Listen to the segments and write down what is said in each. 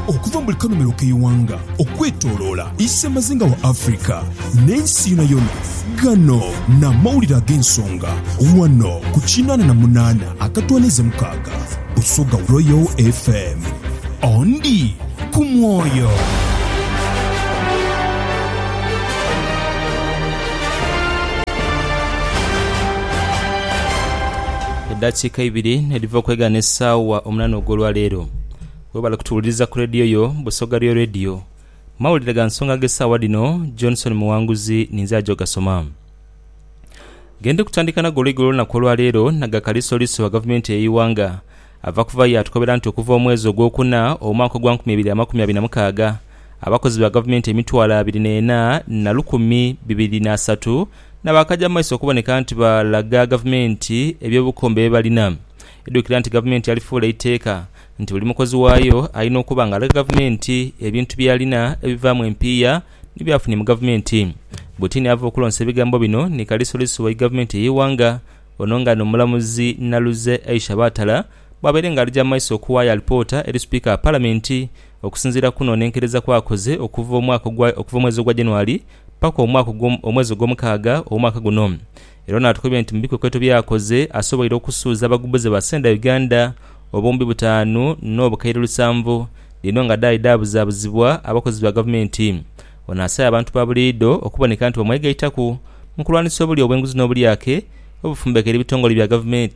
Okuva mu buli kanhumilo k'eighanga okwetoloola isemazinga wa Africa n'ensi yonayona, gano n'amawulire ag'ensonga ghano ku kinaana na munaana akatwaniiza mukaaga Busoga Royal FM. Ondi ku mwoyo. Edhakiika ibiri edhiva okwegana esaawa omunana ogw'olwa leero. Webale kutuwuliriza ku leediyo yo Busoga Real Radio. Mawulire ga nsonga ag'esaawa dhino, Johnson Muwanguzi ninze aja ogasoma. Gendi kutandika nago olweigo olw'olunaku olwa leero na ga kalisoliso agavumenti ey'eighanga ava kuva yaatukobera nti okuva omwezi ogw'okuna omwaka ogwa nkumi ibiri amakumi abiri na mukaaga, abakozi ba gavumenti emitwalo abiri n'ena na lukumi bibiri n'asatu N'abakaja mu maiso okuboneka nti balaga gavumenti eby'obukombe bye balina. Idhukira nti gavumenti yalifuula eiteeka nti buli mukozi waayo alina okuba nga alaga gavumenti ebintu by'alina ebivaamu empiiya ni byafunye mu gavumenti. Butini ava okulonsa ebigambo bino ni Kaliisoliiso w'egavumenti ey'eighanga, ono nga n'omulamuzi Naluze Aisha Batala, Bwabaire nga alija mu maiso okuwayo alipoota eri Sipiika wa Palamenti, okusinziira kukunonenkereza kwakoze okuva omwaka ogwa okuva omwezi ogwa January paka omwaka ogwo omwezi ogwomukaaga owomwaka guno era ono atukubye nti mubikwekweto byakoze asoboire okusuuza abagubuze ba Senda Uganda obuwumbi butaanu nobukaire lusanvu dhino nga dhaali dhabuzabuzibwa abakozi ba gavumenti Ono asabye abantu babuliidho okuboneka nti bamwegaitaku mukulwanisa obulya obwenguzi nobulyake obufumbekera ebitongole bya gavumenti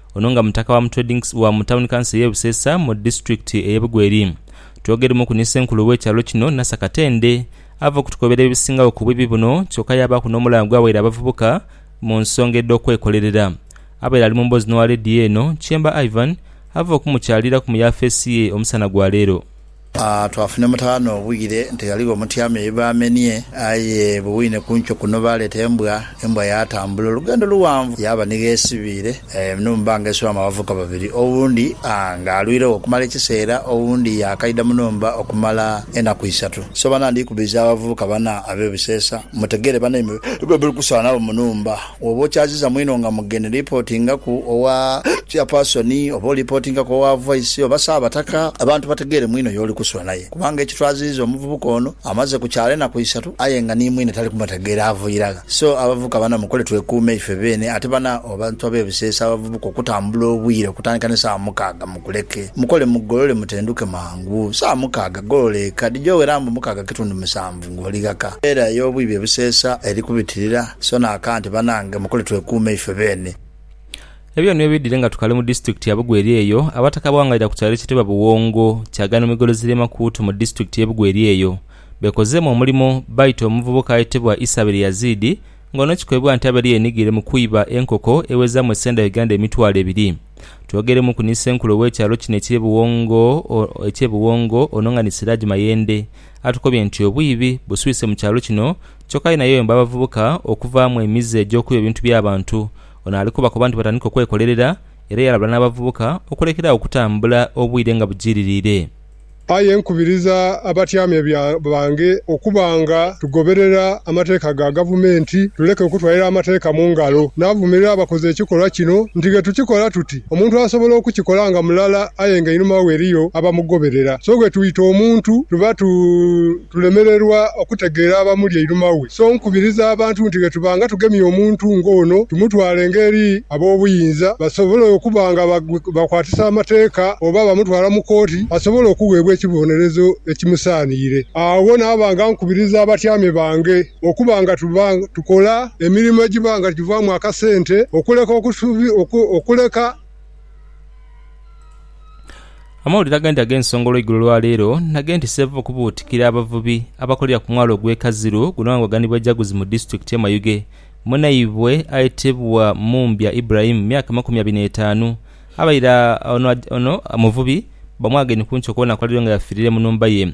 Ono nga mutaka wa mutwedings wa mu tawuni kanso eye Buseesa mu disitulikiti eye Bugweri. Twogeremuku ni senkulu we kyalo kino Nasa Katende ava okutukobera ebisingagho ku bwibi buno kyoka yabaaku n'omulanga gwa waire abavubuka mu nsonga edh'okwekolerera. Abaire ali mu mboozi n'owa leediyo eno, Kyemba Ivan ava okumukyaliraku mu yafeesi ye omusana gwa leero. Twafuna emutaana obwire nti ghaligho omutyame ye baamenie, aye bwe wine ku nkyo kuno baaleeta embwa. Embwa yaatambula olugendo luwanvu yaaba ni gh'esibiire. Muno mu banga iswaamu abavubuka babiri, owundi ng'alwiregho okumala ekiseera, owundi yaakaidha mu nhumba okumala enaku isatu. So bana ndikubiza abavubuka bana ab'ebiseesa, mutegere banaimwe bwe muli kusaanagho mu nhumba. Bw'oba okyaziza mwino nga mugeni, lipootingaku owa Chairpersoni oba olipootingaku owa Voice oba Ssaabataka abantu bategeere mwino y'oli kusula naye kubanga ekitwaziiza omuvubuka ono amaze ku kyalo enaku isatu aye nga ni mwine tali kumutegeera ava irala so abavubuka bana mukole twekuume ife beene ate bana abantu ab'e Buseesa abavubuka okutambula obwire okutandika ni saawa mukaaga mukuleke mukole mugolole mutenduke mangu saawa mukaaga golola eka dhija owera mbu mukaaga kitundu musanvu. Eve ng'oli ghaka. Embeera ey'obwibi ebuseesa eri kubitirira, so n'aka nti, Banange mukole twekuume ife beene. Ebyo nio bidhire nga tukali mu disitulikiti ya Bugweri eyo abataka abawangaalira ku kyalo ekitebwa Buwongo kyagano migolo ziri emakuutu mu disitulikiti ye Bugweri eyo bekozeemu omulimo baita omuvubuka ayetebwa Isabel Yazid nga ono kikoibwa nti abaire yenigire mu kwiba enkoko ewezaamu esenda Uganda emitwalo ebiri. Twogeremuku ni senkulu owekyalo kino ekye Buwongo ekye Buwongo ono nga ni Siraj Mayende atukobye nti obwiibi buswise mu kyalo kino kyoka aye nayeyomba abavubuka okuvaamu emize egy'okwiba ebintu by'abantu. Ono ali kubakoba nti batandike okwekolerera era yalabula n'abavubuka okulekera agho okutambula obwire nga bujiiririire. Aye nkubiriza abatyamye bange okuba nga tugoberera amateeka ga Gavumenti tuleke okutwalira amateeka mu ngalo. Naavumirira abakoze ekikolwa kino nti ghe tukikola tuti Omuntu asobola okukikola nga mulala aye nga einhuma we eriyo abamugoberera. So bwetuyita omuntu tuba tulemererwa okutegeera abamuli einhuma we. So nkubiriza abantu nti bwetuba nga tugemye omuntu nga ono tumutwalenga eri ab'obuyinza basobole okuba nga bakwatisa amateeka oba bamutwala mu kooti asobole okuweebwa ekibonerezo ekimusaaniire. Agho naaba nga nkubiriza abatyame bange. Okuba nga tuba tukola emirimo egiba nga givaamu akasente, okuleka okuleka. Amawulire agandi ag'ensonga olweigulo lwa leero na g'e nti Sevuvu kubuutikira abavubi abakolera ku mwalo ogw'e Kaziru guno aghanhibwa Jaguzi mu disitulikiti y'e Mayuge munaibwe ayetebwa Mumbya Ibrahim myaka amakumi abiri n'etaanu abaire ono muvubi bamwageine ku nkiiko okubonaku aliyo nga yafiirire mu nhumba ye.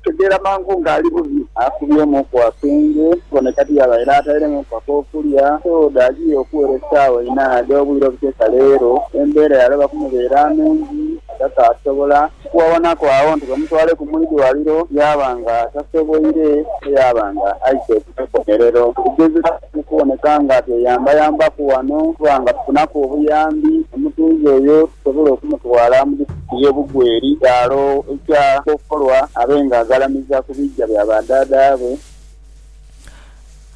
Ategeera mangu nga ali bubi. Akubyemu ku akenge kone kati yaaba era atairemuku ak'okulya. Soda ajiire okuwera esaawa inha edh'obwire obuteesa leero. Embeera yaloba kumubeera nungi nga kaasobola kuwawanhaku agho nti bamutwaleku mu idwaliro yaaba nga tasoboire ate yaaba nga aise ku ikomerero. Tugezezaku mu kuboneka nga tweyambayambaku ghano okuba nga tufunaku obuyambi omutuuze oyo tusobole okumutwala mu. Ye bugweri kyalo ekya kokolwa abe nga aghalamiza ku biija bya ba daadaabwe.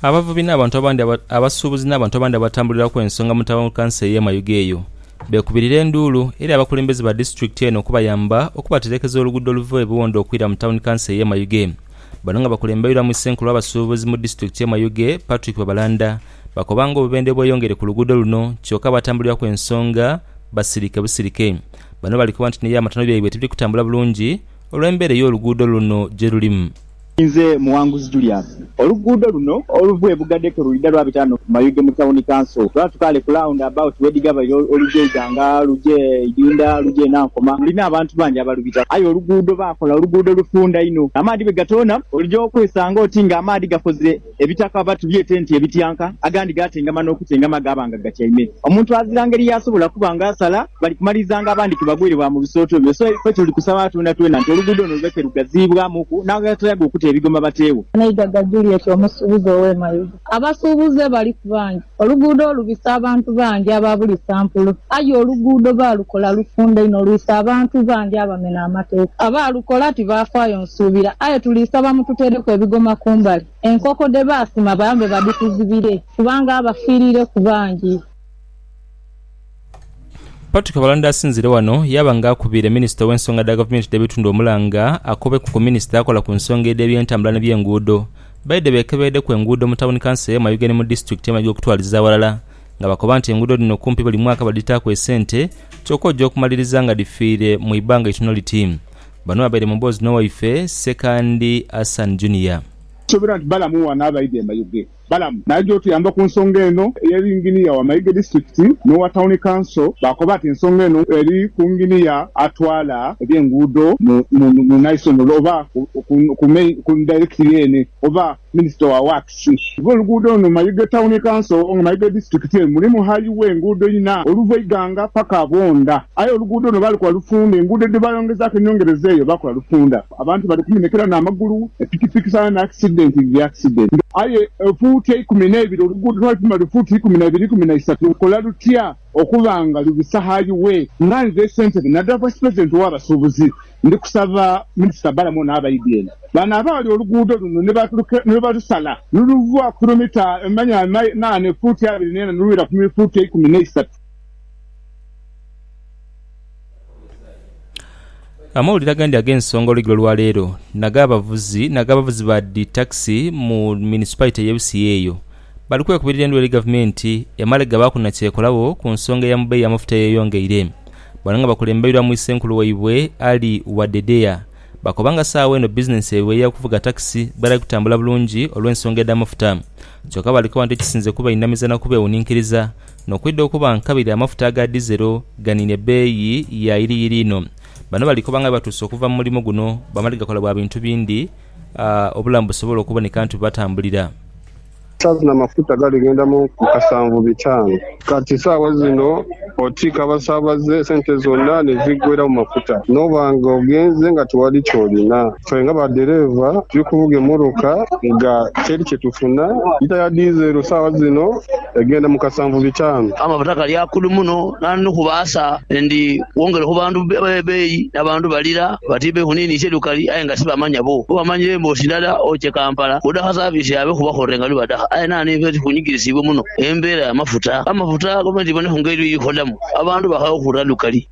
Abavubi n'abantu abandi abasuubuzi n'abantu abandi abatambuliraku ensonga mu taawuni kanso ey'e Mayuge eyo beekubirira enduulu eri abakulembeze ba disitulikiti eno okubayamba okubaterekeza oluguudo oluva e Buwonde okwira mu taawuni kanso ey'e Mayuge Bano nga bakulembeirwamu Ssenkulu w'abasuubuzi mu disitulikiti y'e Mayuge Patrick Babalanda bakoba nga obubendhe bweyongere ku luguudo luno kyoka abatambuliraku ensonga basirike busirike. Bano bali koba nti ni eby'amatano byaibwe tibiri kutambula bulungi olw'embeera ey'oluguudo luno gye lulimu. Inze Muwanguzi Julius. Oluguudo luno oluva e Bugadeko lwidha lwabita ghano ku Mayuge mu Tawuni Kanso. Lwatu kale ku launda abawuti wedhigabaire olugya e Iganga, lugya e Idinda, lugya e Nankoma, lulina abantu bangi abalubitaku. Aye oluguudo baakola oluguudo lufunda inho amaadhi bwe gatoona oligya okwesanga oti ng'amaadhi gakoze. Ebitaka batubyeta nti ebityanka, agandi gaatengama n'okutengama gaaba nga gatyaime. Omuntu azira ngeri y'asobola kuba nga asala, bali kumalirizanga abandi ke bagwire bwa mu bisooto ebyo. So ife tuli kusaba Katonda twena nti oluguudo luno luleme ke lugaziibwamuku n'abataayaga okute ebigoma bateewo. Amaiga gajulira ekyo omusuubuzi ow'e Mayuge. Abasuubuzi bali ku bangi. Oluguudo olubisa abantu bangi aba buli sampulu. Aye oluguudo baalukola lufunda inho olwisa abantu bangi abamena amateeka. Abaalukola tibaafaayo nsuubira. Aye tuli saba mututeereku ebigoma ku mbali, enkoko dhe baasima bayambe badhituzibire kubanga abafiiriireku bangi. Patrick Abalanda asinzire wano yaaba nga akubiire minisita ow'ensonga dha gavumenti dh'ebitundu omulanga akobeku ku minisita akola ku nsonga edh'ebyentambula ni by'enguudo baidhe beekebeedeku enguudo mu tawuni kanso ye Mayuge ni mu disitulikiti emali okutwaliza aghalala nga bakoba nti enguudo dhino kumpi buli mwaka badhitaaku esente kyoka oja okumaliriza nga dhifiire mu ibanga itono liti Bano babaire mu mboozi n'owaife Ssekandi Hassan Junior. Suubira nti balamu wano abaidha e Mayuge Balaam n'aja otuyamba ku nsonga eno eye Yinginiya wa Mayuge Disiturikiti n'owa Tawuni Kanso baakoba nti ensonga eno eri ku Yinginiya atwala eby'enguudo mu Naisonolo oba ku Dayirekitiri yeene oba Minisita wa Waakisi. Kuba oluguudo luno Mayuge Tawuni Kanso oba nga Mayuge Disiturikiti eno mulimu hayiwe enguudo inha oluva Iganga paka Bwondha aye oluguudo luno baalukola lufunda enguudo dhe baayongezaaku enyongereza eyo baakola lufunda. Abantu bali kumenhekera n'amagulu, pikipiki sana n'akisidenti dhiri akisidenti. Aye fuuti eikumi n'eibiri oluguudo twalupima luli fuuti ikumi na ibiri ikumi na isatu lukola lutya okuba nga lubisa hayiwe? Nga nze Ssentebe nadala Vice President ow'abasuubuzi ndi kusaba Minisita Balaam ono abaidhi eno bano abaali oluguudo luno ni balusala nuluva ku kilomita manya na ne fuuti abiri n'ena nolwira ku fuuti eikumi n'eisatu. Amawulire agandi ag'ensonga olweggulo olwaleero nag'abavuzi nag'abavuzi ba dhi takisi mu munisipaito ey'e Busia eyo bali kwekubirira endulu eri gavumenti emale gabaaku na kyekolagho ku nsonga ya mu bbeeyi y'amafuta eyeyongeire. Bano nga bakulembeirwamu Issenkulu waibwe Ali Wadedea bakoba nga saagho eno bizinensi yaibwe eya kuvuga takisi bwetali kutambula bulungi olw'ensonga edh'amafuta kyoka bali koba nti ekisinze kubainamiza na kubeewuninkiriza N'okwidha okuba nkabiri amafuta aga dizero ganiine bbeeyi ya yiriyiri inho. Bano bali koba nga bwebatuuse okuva mu mulimo guno bamale gakola bwa bintu bindi obulamu busobole okuboneka nti bwebatambulira. Saazi na mafuta gali ghenda mu kasanvu bitaanu. Kati saawa zino otiika abasaabaze sente zonna ne ziggwera mu mafuta n'oba nga ogenze nga tiwali ky'olina. Ffe nga ba dhereeva tuli kuvuga emmotoka nga teri kye tufuna. Lita ya diizero sawa zino egenda mu kasanvu bitaanu. Amafuta gali akulu muno nandi ni kubaasa endi kwongera ku bantu ebei n'abantu balira bati ebei kuniinisa edukali aye nga sibamanya bo. Bo bamanya emboosi ndala oche Kampala odha ha service yaabwe kuba bakolera nga bibadha. Aye naano ife tuli kunyigirisibwa muno embeera ya mafuta. Amafuta gavumenti ebone ku ngeri yokukodamu abantu baghagho okuwulira dukali.